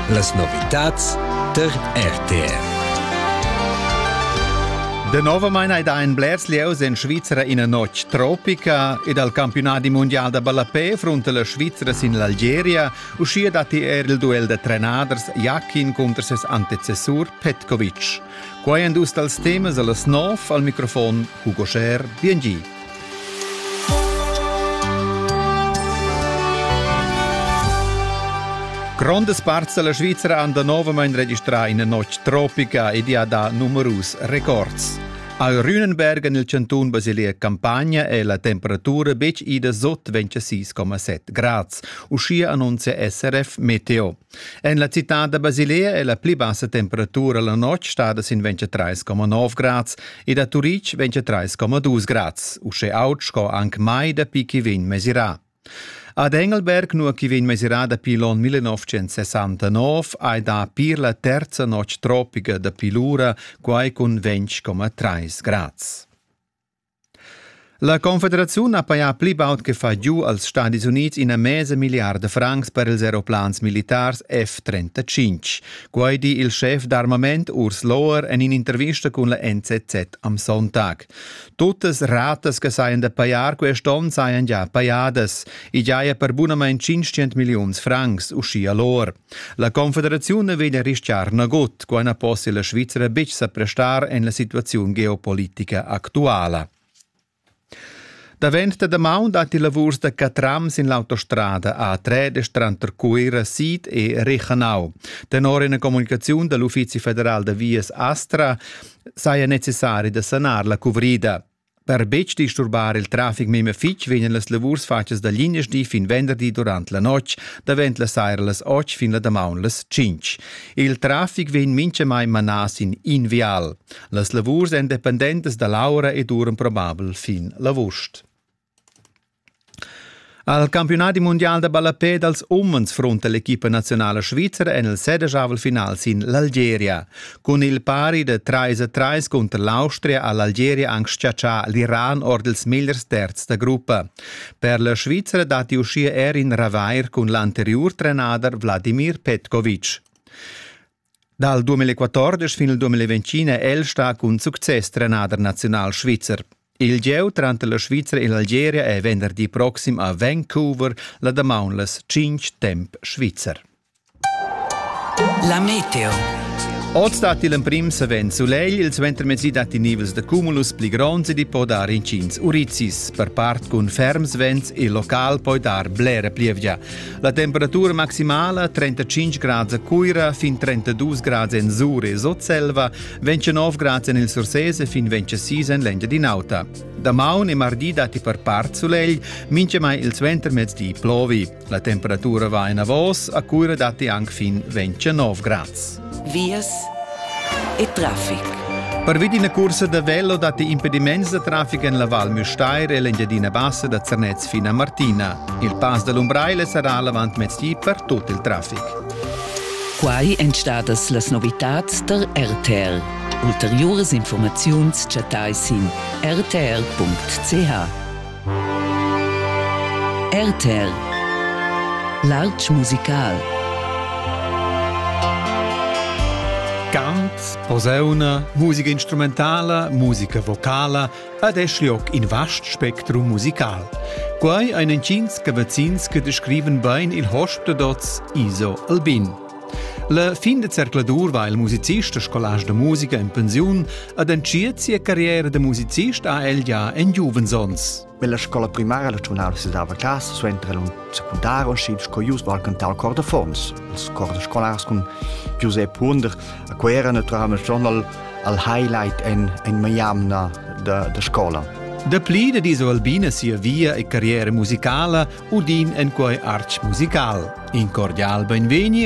Las novitads tar RTR. Denovamein ei da ein blers lieus en Svizra ina notg tropica ed al campiunadi mundial da ballapé frunta la Svizra sin l'Algeria. Uschia datti er il duell da trenaders Jakin cunter ses antecessur Petkovic. Quai èn dus dals temas a las nov al microfon Hugo Scher. Bien Grondas parts della Svizzera han danovamein registrà ina notg tropica ed ha dà numerus records. Al Rühnenberg en il cantun Basilea Campania è la temperatura betg ida sot 26,7 grad. Uschia annunzia SRF Meteo. En la citad da Basilea è la pli bassa temperatura la notg stada sin 23,9 grads e da Turitg 23,2 grads, uschè aut sco anc mai dapi ch'i vegn mesirà. Ad Engelberg, nua ch'i vegn mesirà dapi l'onn 1969, hai dà pir la terza notg tropica dapi lura, quai cun 20,3 grads. La Confederaziun ha pajà pli baud che fai giu als Stadis Unids ina mesa milliarda francs per ils aeroplans militars F-35. Quai di il schef d'armament Urs Lohr en in'intervista cun la NZZ am Sonntag. Tuttas ratas che sajan da pajar quest onn sajan già pajadas. I giaja per bunamain 500 milliuns francs, uschia Lohr. La confederaziun vegn a rischiar nagut, quai na possia la Svizra betg sa prestar en la situaziun geopolitica actuala. Davent da damaun datti lavurs da catram sin l'autostrada A3 tranter Cuira Sid e Reichenau. Tenor ina comunicaziun da l'Uffizi federal da vias Astra saja necessari da sanar la cuvrida. Per betg disturbar il trafic memia fitg vegnan las lavurs fatgas da linasdi fin venderdi durant la notg, davent la saira las 8 fin la damaun las 5. Il trafic vegn mintgamai manà sin in vial. Las lavurs èn dependentas da l'aura e duran probabel fin l'avust. Al campiunadi mundial da ballapè dals umens frunta l'equipa naziunala svizra en il sedeschavel final sin l'Algeria. Cun il pari da 3 a 3 cunter l'Austria ha l'Algeria anc schiaccià l'Iran ord ils migliers terz da gruppa. Per la Svizra datti uschia er in ravair cun l'anteriur trenader Vladimir Petkovic. Dal 2014 fin al 2021 è el stà cun success trenader naziunal svizzer. Il gieu tranter la Svizra e l'Algeria è venderdi proxim a Vancouver la damaun las 5 temp svizzer. La meteo. Oz datti l'emprim savens sulegl, il suentermezdi datti nivels da cumulus pli gronds ed i po dar incins urizis. Per part cun ferms vents il local poi dar blera plievgia. La temperatura maximala 35 grads a Cuira, fin 32 grads en Sur e Sotselva, 29 grads en il Sursés e fin 26 en l'Engiadin'Auta. Damaun e mardi datti per part sulegl, mintgamai il suentermezdi plovi. La temperatura va enavos, a Cuira datti anc fin 29 grads. vias e traffic. Parvi d'ina cursa da velo datti impediments da traffic en la Val Müstair e l'Engiadina Bassa da Zernez fino a Martina. Il pass da l'Umbraile sarà l'avant mezdi per tut il traffic. Quai èn stadas las novitads tar RTL. Ulteriuras informaziuns chattai sin rtl.ch. RTL L'altsch musical Cant, posauna, musica instrumentala, musica vocala ed es lioc in vast spectrum musical. Quai ein entgins cavazzins che descriven bein il host da dots ISO Albin. La fin da zercladur va il musicist e scolast da musica en pensiun ad entschiet sia carriera da musicist ha el ja en giuvens Nella scola primaria la giornala si dava casa, suenter la secundaria usciv sco ius val cantar cor da Forns. Els cor da scolars cun Giuseppe Hunder, a cui era naturalmente schon al, al highlight en, en Miami da, da scola. Dapli da diso Albina sia via e carriera musicala udin en quei arch musical. In cordial benvegni